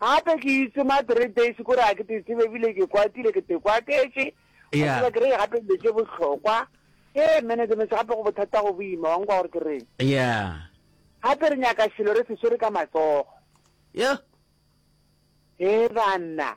Gape ke itse ma three days kore a ke te tsebe ebile ke kwatile ke te kwaketše a Yeah. tseba ke re gape dilo tše bohlokwa ke management gape go bothata go boima wa nkwa gore ke reng yeah gape re nyaka selo re se swere ka matsogo yo e banna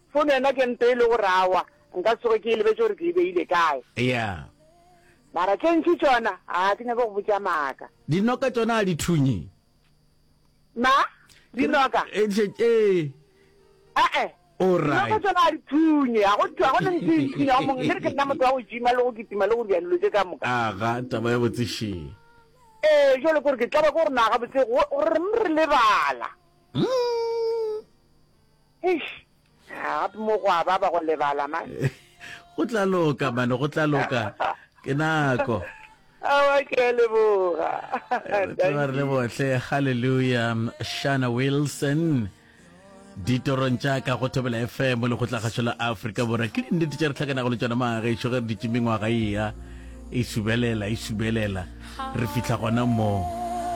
Fono yona ke mpe e le gore awa, nka se tsoge ke e lebetše gore ke e beile kae. Yeah. Mara tše ntši tšona, a ke nyake go botša maaka. Dinoka tšona a di thunye? Ma? Dinoka? Ee. A-e. Alright. Dinoka tšona a di thunye, a go tšwa go ne ntse e thunya go mongwe, ke re ke nna motho wa go jima le go kitima le go dira dilo tše ka moka. Aga, taba ya botsešeng. Ee, jwale kore ke tlabe ko gore na gabotse go reng re lebala. Mm. Eish, gape mo gwa ba ba go lebala man. Go tla loka man, go tla loka. Ke nako. Awa ke a leboga. Tla re le bohle. Hallelujah. Shana Wilson. ditorong tša ka go thobela fm le go tlagašo la afrika borwa ke dinnete tša re tlhakanago le tšona magešo ge re ditše mengwaga eya e subelela e subelela re fitlha gona moo